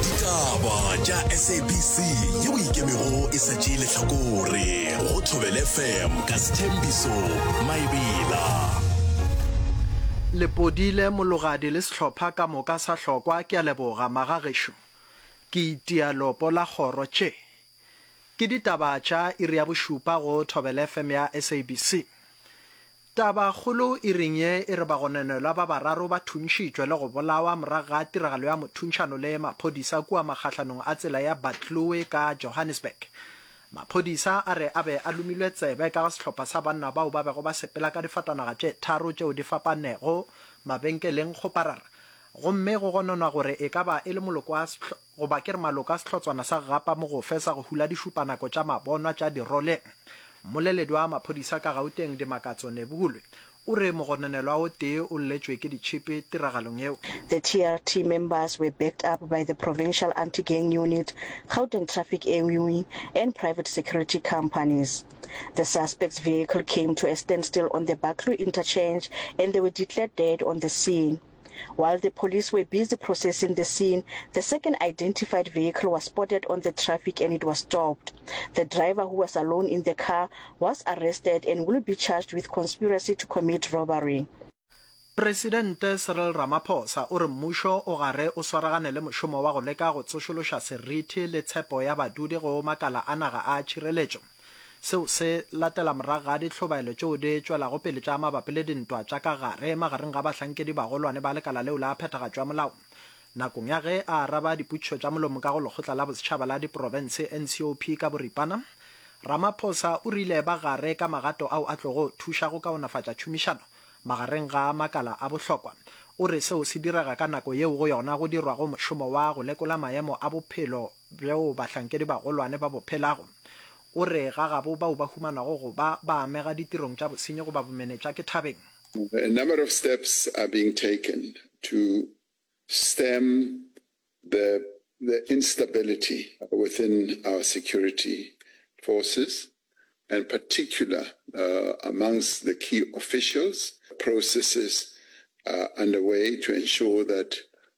ditaba tša sabc ye o ikemego e sa tšee lehlakore go thobele fm ka sethembiso maebela lepodile mologadi le sehlopha ka moka sa hlokwa ke a leboga magagešo ke itia lopo la kgoro tše ke ditaba tša iri ya bošupa go thobele fm ya sabc Tabakgolo e reng ye e re bagononelwa ba bararo ba thuntšhitšwe le go bolawa morago ga tiragalo ya mothuntšhano le maphodisa kua makgahlanong a tsela ya Batlue ka Johannesburg. Maphodisa a re a be a lomilwe tsebe ka ga sehlopha sa banna bao ba bego ba sepela ka difatanaga tše tharo tšeo di fapanego mabenkeleng go parara gomme go gononwa gore e ka ba e le moloko wa Goba ke re maloko a sehlotswana sa gapa mogofe sa go hula dišupanako tša mabonwa tša dirole. Mmoleledi wa maphodisa ka Gauteng Dimakatso Nebuhulwe o re mogononelwa o tee o lletšwe ke ditšhipi tiragalong yeo. The TRT members were backed up by the Provincial Anti-Gang Unit, Gauteng Traffic Eui and private security companies. The suspect's vehicle came to a standstill on the Baklu interchange and they were declared dead on the scene. While the police were busy processing the scene, the second identified vehicle was spotted on the traffic and it was stopped. The driver who was alone in the car was arrested and will be charged with conspiracy to commit robbery. Presidente Cyril Ramaphosa o re mmušo o gare o swaragane le mošomo wa go leka go tsošološa seriti le tshepo ya badudi go makala a naga a tšhireletšo. Seo se latela morago ga ditlhobaelo tšeo di tšwelago pele tša mabapi le dintwa tša ka gare magareng ga bahlankedi-bagolwane ba lekala leo la phethagatšo ya molao. Nakong ya ge a araba dipotšišo tša molomo ka go Lekgotla la Bosetšhaba la Diprofense, NCOP, ka boripana, Ramaphosa o rile ba gare ka magato ao a tlogo thuša go kaonafatša tšhomišano magareng ga makala a bohlokwa. O re seo se direga ka nako yeo go yona go dirwago mošomo wa go lekola maemo a bophelo bjoo bahlankedi-bagolwane ba bo phelago. O re ga gabo bao ba humanago go ba ba amega ditirong tša bosenyi goba bomenetša ke thabeng. A number of steps are being taken to stem the the instability within our security forces and particular amongst the key officials. Processes are underway to ensure that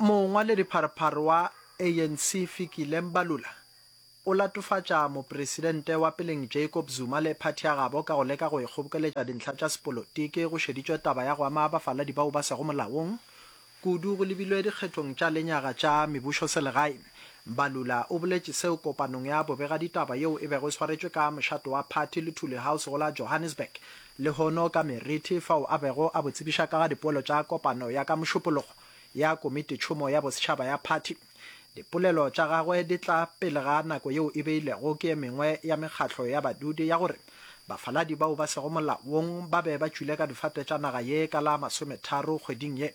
Mongwaledipharpar wa ANC Fikile Mbalula o latofatša mopresidente wa peleng Jacob Zuma le phathi ya gabo ka go leka go e kgobokeletša dintlha tša sepolotiki go šeditšwe taba ya go ama bafaladi bao ba sego molaong kudu go lebilwe dikgethong tša lenyaga tša mebušoselegae. Mbalula o boletše seo kopanong ya bobegaditaba yeo e bego e swaretšwe ka mošato wa phathi le Thuli House go la Johannesburg Lehono ka Meriti fao a bego a bo tsebiša ka ga dipoelo tša kopano ya ka Mošupologo ya Komitetšhomo ya Bosetšhaba ya phathi. Dipolelo tša gagwe di tla pele ga nako yeo e beilwego ke e mengwe ya mekgatlo ya badudi ya gore bafaladi bao ba sego molaong ba be ba tšwile ka difate tša naga ye ka la masometharo kgweding ye.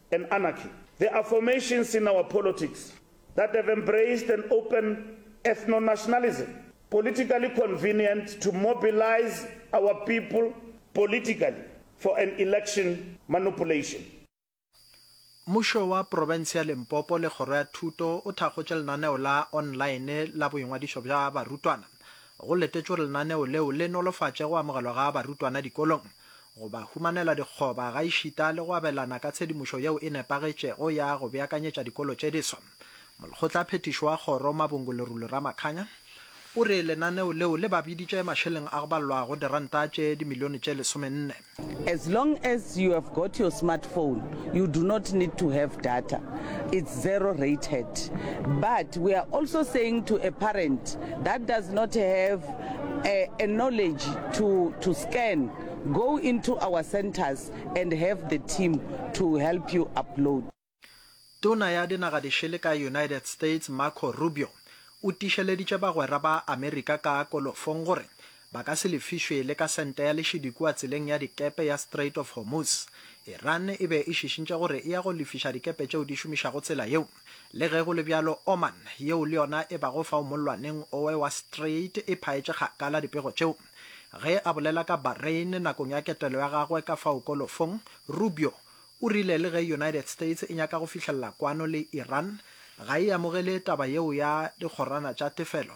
and anarchy. There are formations in our politics that have embraced an open ethno-nationalism, politically convenient to mobilize our people politically for an election manupulation. Mmušo wa profense ya Limpopo le Kgoro ya Thuto o thakgotše lenaneo la online la boingwadišo bja barutwana. Go letetšwe gore lenaneo leo le nolofatše go amogelwa ga barutwana dikolong. go ba humanela dikgoba gaešita le go abelana ka tshedimošo yeo e nepagetšego ya go beakanyetša dikolo tše diswa. Molekgotlaphethiši wa kgoro, Mabongo Lerule Ramakganya, o re lenaneo leo le ba biditše mašeleng a go balwago diranta tše dimilione tše lesomenne. As long as you have got your smartphone, you do not need to have data, it's zero rated. But we are also saying to a parent that does not have a, a knowledge to, to scan, go into our centers and have the team to help you upload. Tona ya Dinagadisele ka United States Marco Rubio o tišeleditše bagwera ba Amerika ka kolofong gore ba ka se lefišwe le ka sente ya lešidi kua tseleng ya dikepe ya Strait of Hormuz. Iran e be e šišintše gore e ya go lefiša dikepe tšeo di šomišago tsela yeo. Le ge go le bjalo, Oman, yeo le yona e bago fao mollwaneng owe wa Strait, e phaetše kgakala dipego tšeo. Ge a bolela ka Bahrain nakong ya ketelo ya gagwe ka fao kolofong, Rubio o rile le ge United States e nyaka go fihlelela kwano le Iran, ga e amogele taba yeo ya dikgorana tša tefelo.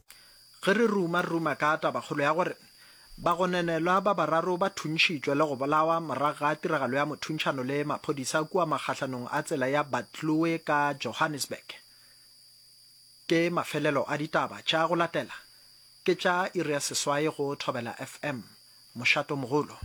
Ge re ruma, re ruma ka tabakgolo ya gore bagononelwa ba bararo ba thuntšhitšwe le go bolawa morago ga tiragalo ya mothuntšhano le maphodisa kua makgahlanong a tsela ya Batlue ka Johannesburg. Ke mafelelo a ditaba tša go latela, ke tša iri ya seswai go Thobela FM. Mošato mogolo.